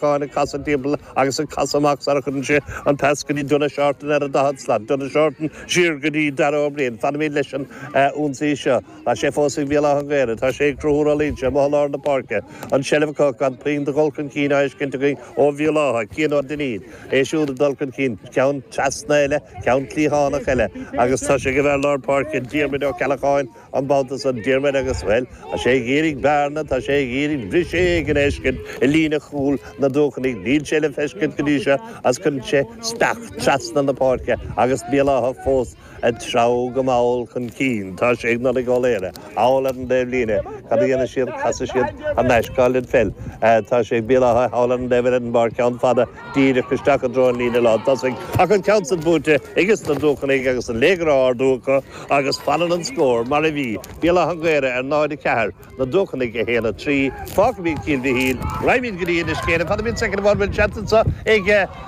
Cháin ag casadh timpeall agus ag casadh amach sara chuireann sé an pas go dtí Donagh Seartan ar an daichead slat, Donagh Seartan siar go dtí Dara Ó Briain. Fanfaimid leis an ionsaí seo. Tá sé fós ag Bhéal Átha an Ghaorthaidh, tá sé ag Conchúr Ó Loingsigh amuigh i lár na páirce, an tseilbh acu ach gan puinn de dhul chun cinn á fheiscint againn ó Bhéal Átha, Cian Ó Duinnín, é siúd ag dul chun cinn, ceann trasna eile, ceann cliathánach eile agus tá sé ag an bhfear lár páirce, Diarmaid Ó Ceallacháin. An babhta san, Diarmaid agus, bhuel, tá sé ag iarraidh bearna, tá sé ag iarraidh briseadh éigin a fheiscint i líne chúil na Dúchonnaigh. Níl sé le feiscint go dtí seo is cuireann sé speach trasna na páirce agus Béal Átha fós ag treabhadh go mall chun cinn. Tá sé ag Nollaig Ó Laoghaire thall ar an dtaobh líne. Cad a dhéanfaidh siad? Casfaidh siad thar n-ais Colin Fell. Tá sé ag Béal Átha thall ar an dtaobh eile den bpáirc, ceann fada díreach isteach i dtreo an líne lán tosaigh ach an ceann san buaite ages na Dúchonnaigh agus an léigear á ardú acu. Agus fanann an scór mar a bhí, Béal Átha an Ghaorthaidh ar 0, 4, na Dúchonnaigh 1, 3. Fágfaimid Cill Mhichíl, raghaimid go dtí Inis Céin, fanfaimid soicind amháin, bhfuil seans anseo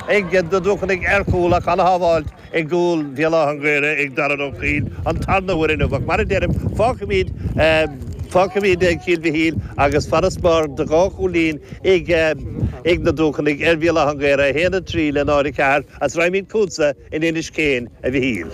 ag na Dúchonnaigh ar chúl ach an-shábháilt i gcúl Bhéal Átha an Ghaorthaidh ag Darren Ó Coill an tarna huair inniu ach mar a deirim, fágfaimid, fágfaimid Cill Mhichíl agus farasbarr de dhá chúilín ag na Dúchonnaigh ar Bhéal Átha an Ghaorthaidh, 1, 3 le 0, 4. Is raghaimid chugatsa in Inis Céin, a Mhichíl.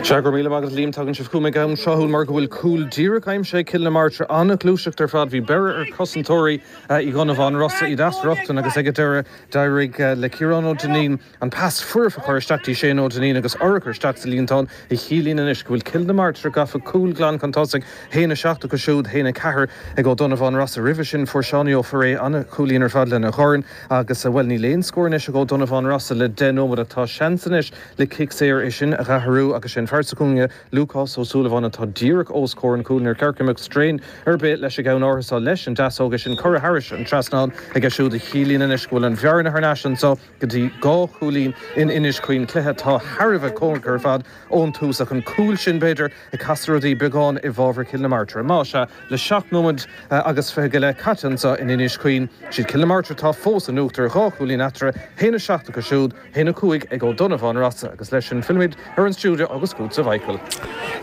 Sea, go raibh míle maith agat, a Liam. Tagann sibh chugam ag am tráthúil mar go bhfuil cúl díreach aimsithe ag Cill na Martra. An-ghluaiseacht ar fad. Bhí beirthe ar chosantóirí Uí Dhonnabháin Rossa, iad as a riocht ann agus ag an deireadh d'éirigh le Ciarán Ó Duinnín an pas foirfe a chur isteach dtí Shane Ó Duinnín agus urchar isteach sa líontán a chiallaíonn anois go bhfuil Cill na Martra gafa cúl glan chun tosaigh, 1-7 acu siúd, 1-4 ag Ó Donnabháin Rossa. Roimhe sin fuair Seánie Ó Foirréidh an-chúilín ar fad lena dhorn. Agus, bhuel, níl aon scór anois ag Ó Donnabháin Rossa le deich nóiméad ach tá seans anois le cic saor é sin a dh'athrú agus sé an fear sa chúinne, Lúcás Ó Súilleabháin, atá díreach os comhair an chúil, níor cheart go mbeadh straidhn ar bith leis an gceann áirithe seo leis an deasóg, é sin curtha thairis an trasnán aige siúd a chiallaíonn anois go bhfuil an bhearna thar n-ais anseo go dtí dhá chúilín in Inis Caoin, cluiche atá thar a bheith cóngarach ar fad ón tús ach an cúl sin, b'fhéidir, Ag casadh rudaí beagán i bhfabhar Chill na Martra. Más ea, le seacht nóiméad agus fiche go leith caite anseo in Inis Caoin, siad Cill na Martra atá fós in uachtar dhá chúilín eatarthu, 1-7 acu siúd, 1-5 ag Ó Donnabháin Rossa agus leis sin fillfimid ar an stiúideo agus chugatsa, a Mhichíl.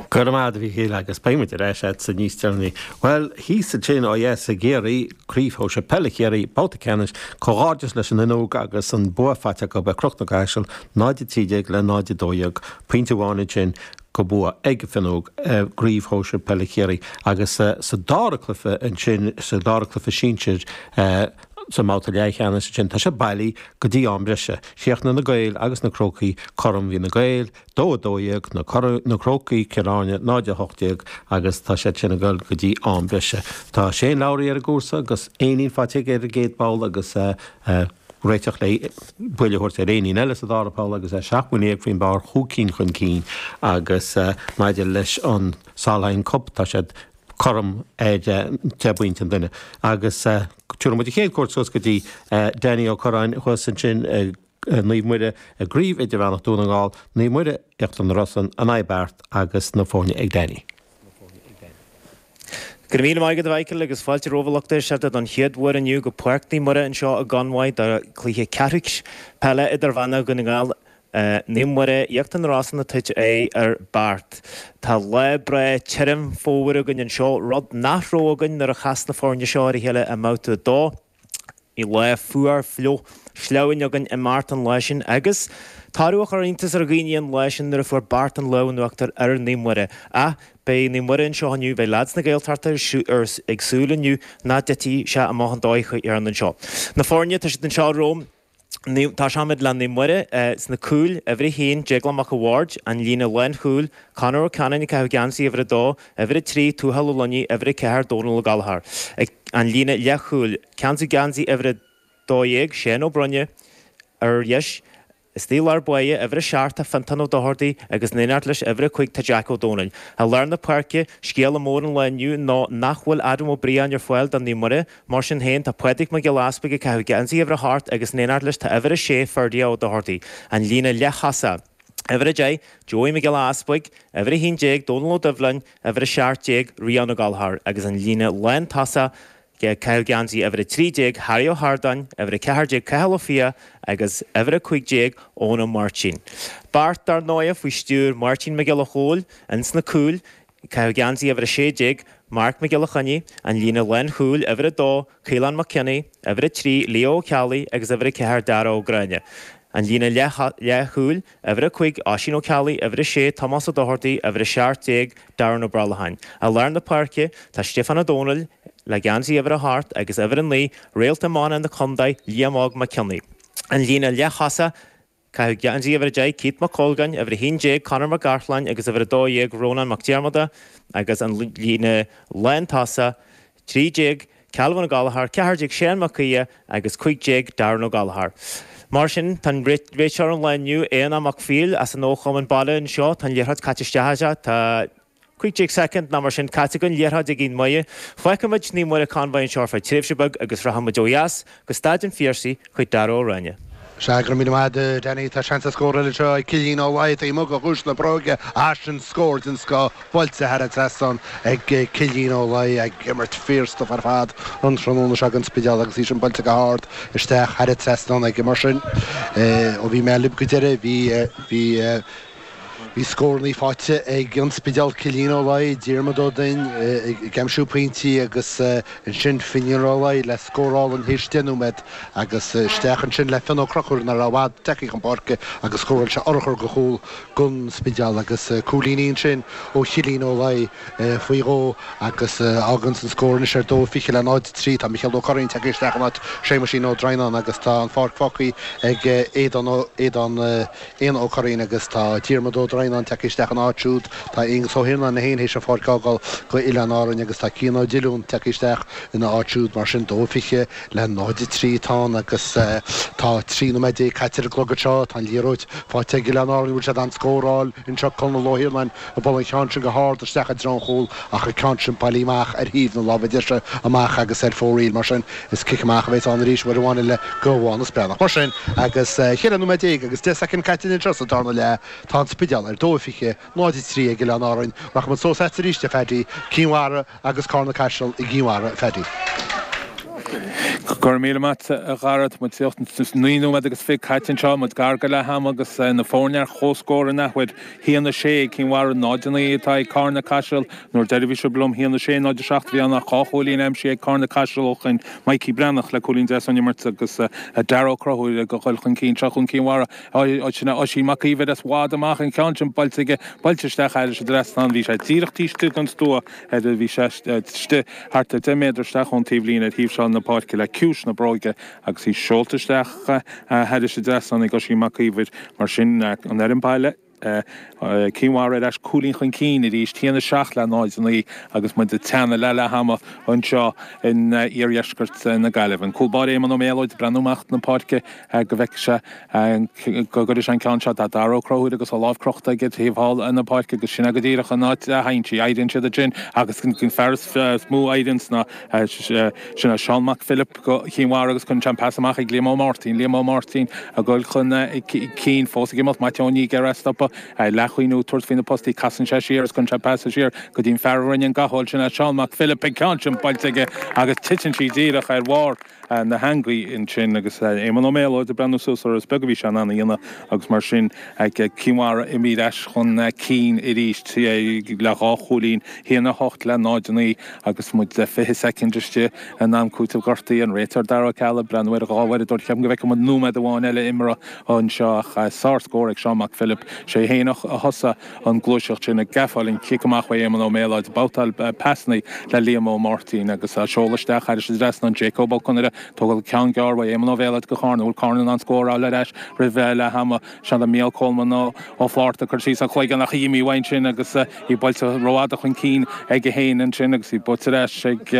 Go raibh maith agat, a Mhíchíl, agus beidh muid ar ais a'dsa níos deireanaí. Bhuel, thíos ansin, ó dheas i gCiarraí, Craobh Shóisir Peile Chiarraí, babhta ceannais, comhghairdeas leis an Fhionnóg agus an bua faighte acu ar Chnoc na gCaiseal, 0-13 le 0-12, pointe amháin ansin, go bua ag an bhFionnúig i gCraobh Shóisir Peile Chiarraí agus sa dara cluiche ansin, sa dara cluiche sinsear sa mbabhta leathcheannais ansin, tá siad bailí go dtí am breise. Chríochnaigh Na Gaeil agus Na Crócaigh cothrom, bhí Na Gaeil 2, 12, Na Crócaigh, Cill Airne 0, 18 agus tá siad sin ag dul go dtí am breise. Tá Shane Lowry ar an gcúrsa agus éinín faighte aige ar an gcéad pholl agus. réiteach le buille a thabhairt ar éinín eile sa dara poll agus é seacht mbuille dhéag faoin bpár chun cinn chun cinn agus maidir leis an Solheim Cup tá siad cothrom ar deich bpointe an duine agus tabharfaidh muid an chéad chuairt suas go dtí Danny Ó Corráin thuas ansin i Naomh Muire i gCraobh Idirmheánach Dún na nGall, Naomh Muire, Íochtar na Rosann, in aghaidh Beart agus na foirne ag Danny. Go raibh míle maith agat, a Mhichael, agus fáilte romhaibh, a lucht éisteachta, don chéad uair inniu go Páirc Naomh Muire anseo i gConmhaigh do chluiche ceathrúceannais peile idirmheánach Dhún na nGall, Naomh Muire, Íochtar na Rosann ag tabhairt ar Beart. Tá lá breá tirim, fómhair againn anseo, rud nach raibh againn nuair a chas na foirne seo ar a chéile i mBabhta 2. Bhí lá fuar fliuch sleamhain againn i mBeart an lá sin agus tá rud beag iontais ar dhaoine an lá sin nuair a fuair Beart an lámh in uachtar ar Naomh Muire. Ach beidh Naomh Muire anseo inniu, beidh lads na Gaeltachta ag súil inniu nach dtitfidh sé amach an dóigh a dhearna sé. Na foirne, tá siad anseo romham. Tosaímid le Naomh Muire sna cúil, uimhir a haon, Déaglán Mac an Bhaird, an líne lánchúil, Conor Ó Ceanainn ag caitheamh geansaí uimhir a dó, uimhir a trí, Tuathal Ó Luinígh, uimhir a ceathair, Dónal Ó Gallachóir, an líne leathchúil, ceansaí geansaí uimhir a dó dhéag, Séan Ó Broin, ar dheis, istigh i lár báire, uimhir a seacht, tá Fiontán Ó Dochartaigh agus in éineacht leis, uimhir a cúig, tá Jeaic Ó Domhnaill. I lár na páirce, scéala mór an lae inniu ná nach bhfuil Adam Ó Briain ar fáil do Naomh Muire, Mar sin féin, tá Pádraig Mac Giolla Easpaig ag caitheamh geansaí uimhir a hocht agus in éineacht leis tá uimhir a sé, Ferdia Ó Dochartaigh, an líne leath-thosaigh, uimhir a deich, Joey Mac Giolla Easpaig, uimhir a haon déag, Dónal Ó Doibhleáin, uimhir a seacht déag, Rian Ó Gallchóir, agus an líne lántosaigh, ag caitheamh geansaí uimhir a trí déag, Harry Ó hArdáin, uimhir a ceathair déag, Cathal Ó Fiaich, agus uimhir a cúig déag, Eoin Ó Máirtín. Beart, dar ndóigh, faoi stiúir Mháirtín Mac Giolla Chóill ins na cúil, Caitheamh geansaí uimhir 16, Marc Mac Giolla Chainnigh, an líne lánchúil, uimhir 2, Caolán Mac Cionnaith, uimhir 3, Leo Ó Ceallaigh, agus uimhir 4, Dara Ó Gráinne, an líne leathchúil, uimhir 5, Oisín Ó Ceallaigh, uimhir 6, Tomás Ó Dochartaigh, uimhir 17, Darren Ó Brollacháin. I lár na páirce, tá Stiofán Ó Dónaill, le geansaí uimhir 8 agus uimhir 9, réalt iomána na contae, Liam Óg Mac Cionnaith, an líne leath-thosaigh, Caitheamh geansaí uimhir a deich Keith Mac Colgáin, uimhir a haon déag Conor Mac Gartláin agus uimhir a dó dhéag Rónán Mac Diarmada agus an líne lántosach, trí déag Calvin Ó Gallchóir, ceathair déag Seán Mac Aodha agus cúig déag Darren Ó Gallchóir. Mar sin, tá an réiteoir an lae inniu Éanna Mac Phil as an chumann baile anseo, tá an liathróid caite isteach aige, tá. Cúig déag soicind nó mar sin caite againn, Liathróid ag an Mhaigh. Fágfaimid Naomh Muire Convoy anseo ar feadh tréimhse beag agus rachaimid ó dheas go Staid an Phiarsaigh chuig Darragh Ó Ráinne. Sea, go raibh míle maith agat Danny, tá seans ar scór eile anseo ag Cillín Ó Laoi, taobh amuigh de chiumhais na bróige, ach sin scór den scoth buailte thar an trasnán ag Cillín Ó Laoi, ag imirt fíorstuif ar fad an tráthnóna seo ag an Spidéal agus í sin buailte go hard isteach thar an trasnán aige. Mar sin, ó bhí mé libh go deireadh, bhí, bhí, Bhí scórannaí faighte ag An Spidéal, Cillín Ó Laoi, Diarmaid Ó Duinn ag aimsiú pointí agus ansin Finnian Ó Laoi le scór álainn théis deich nóiméad agus isteach ansin le Fionn Ó Conchúir nach raibh i bhfad tagthaí chun páirce agus scóráil sé urchar de chúl don Spidéal agus cúilíní ansin ó Chillín Ó Laoi faoi dhó agus fágann sin an scór anois ar 2, 20 le 0, 3. Tá Micheál Ó Curraoin tagtha isteach in áit Séamuisín Ó Droighneáin agus tá an pháirc fágthaí ag Aodán Ó Aodán. Aodán Ó Curraoin agus tá Diarmaid Ó Droighneáin tagtha isteach ina áit siúd, tá Aonghus Ó hIarnáin é fhéin théis an pháirc a fhágáil do Oileáin Árann agus tá Cian Ó Diollúin tagtha isteach ina áit siúd. Mar sin, 2 20 le 0 3 atá ann agus tá trí nóiméad déag caite ar an gclog anseo. Tá an liathróid faighte ag Oileáin Árann, bhfuil siad in ann scóráil anseo? Conall Ó hIarnáin. a bhuail an ceann sin go hard isteach i dtreo an chúil ach an ceann sin bailithe amach ar thaobh na láimhe deise amach agus ar fóraoil. Mar sin, is cic amach a bheas ann arís uair amháin eile do Mhaghnus Breathnach. Mar sin, agus 14 nóiméad agus 10 soicind caite againn anseo sa darna leath, tá an Spidéal ar dó 20, 0, 3 ag Oileáin Árann. Rachaimid suas agat arís, a Phaddy. Cinn Mhara. Agus Cárna Caiseal i gCinn Mhara a Phaddy. Go raibh míle maith agat a Gharret, muid díreach naoi nóiméad agus fiche caite anseo, muid gar do leath ama agus na foirne ar chomhscór in athuair. Haon a sé ag Cinn Mhara, náid a naoi atá ag Cárna Caiseal. An uair dheiridh a bhí sibh liom, haon a sé, náid a seacht a bhí ann ach dhá chúilín aimsithe ag Cárna Caiseal ó shin, Mikey Breathnach le cúilín deas ón imirt agus Darragh Ó Conchúir ag dul chun cinn seo chugainn Cinn Mhara. Oisín A. Oisín Mac Íomhair as i bhfad amach an cheann sin buailte aige, buailte isteach thairis an dtrasnán, bhí sé díreach taobh istigh den stua ar a bhí sé istigh, thart ar deich méadar isteach ón taobhlíne ar thaobh seáil na páirce le ciumhais na bróige agus í seolta isteach thairis an dtrasnán ag Oisín Mac Íomhair mar sin an fhoireann baile, Cinn Mhara ar ais cúilín chun cinn arís, 1-7 le 0-9 agus muid ag teannadh le leath ama anseo in iardheisceart na Gaillimhe. An cúl báire Éamonn Ó Méalóid ag breathnú amach na páirce. go bhfeicfidh sé, go gcuirfidh sé an ceann seo do Dara Ó Conchúir agus a lámh crochta aige taobh thall na páirce agus sin é go díreach an áit a dtéann sí. Éiríonn siad ansin agus an fear is mó a éiríonn sna, sin é Seán Mac Philip Chinn Mhara agus cuireann sé an pas amach ag Liam Ó Máirtín, Liam Ó Máirtín ag goil chun cinn, fós ag imeacht, Maitiú Ó Nia ag iarraidh é a stopadh, leath ag cuimhniú, tabhairt faoi na postaí, casann sé siar agus cuireann sé an pas siar go dtí an fear a rinne an ghabháil, sin é Seán Mac Philip, an ceann sin buailte aige agus titeann sí díreach ar bharr. na heangaí ansin agus Éamonn Ó Méalóid ag breathnú suas orthu. Is beag a bhí sé in ann a dhéanamh agus mar sin Cinn Mhara imithe ar ais chun cinn arís le dhá chúilín, 1 8 le 0 9, agus muid 20 soicind istigh in am cúiteamh gortaithe. An réiteoir Dara Ó Ceallaigh ag breathnú ar an dhá uaireadóir. Cheapfainn go bhfeicfidh muid nóiméad amháin eile imeartha anseo ach sár-scór ag Seán Mac Philip. Sé féin a thosaigh. an gluaiseacht sin ag gabháil an chic amach ó Éamonn Ó Méalóid, babhtáil pasanna le Liam Ó Máirtín agus á seoladh isteach thairis an trasnán Jacob Ó Conaire, tógáil ceann gearr uaidh Éamonn Ó Méalóid go Charna, bhfuil Carna in ann scór a fháil ar ais roimh leath ama, seod é Micheál Coleman Ó Flaithearta, cur síos an chloiginn ach í imithe uaidh ansin agus í buailte rófhada chun cinn aige féin ansin agus í buailte ar ais ag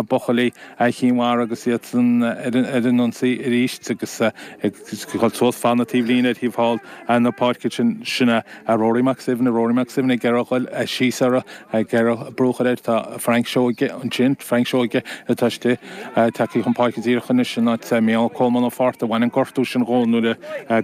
buachaillí Chinn Mhara agus iad ar an ionsaí arís agus ag dul suas fan na taobhlíne ar thaobh thall na páirce sin. Ag Rory Mac Suibhne, Rory Mac Suibhne, ag iarraidh dul síos orra, ag iarraidh brú a chur air. Tá Frank Seoige ansin, Frank Seoige atá istigh, tagtha chun páirce díreach anois in áit Micheál Coleman Ó Flaithearta. Bhain an gortú sin dhó nuair a,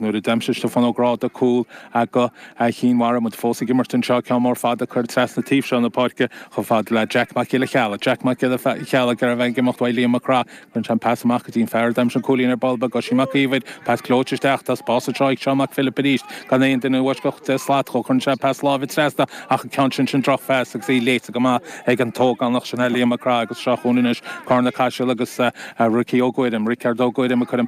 nuair a d'aimsigh Stiofán Ó Gráda cúl go Chinn Mhara. Muid fós ag imirt anseo, ceann mór fada curtha trasna taobh seo na páirce chomh fada le Jack Mac Giolla Cheallaigh, Jack Mac Giolla Cheallaigh, ag iarraidh a bheith ag imeacht uaidh Liam Mac Craith, Cuireann sé an pas amach go dtí an fear a d'aimsigh an cúilín ar ball beag, Oisín Mac Íomhair, pas gleoite isteach, tá spás anseo ag Seán Mac Philip arís, gan aon duine i bhfoisceacht deich slat dhó, cuireann sé pas láimhe trasna ach an ceann sin, sin drochphas agus í léite go maith ag an t-ógánach sin thall, Liam Mac Craith, agus seo chugainn anois Carna Caiseal agus Ricky Ó Guairim, Richard Ó Guairim ag cur an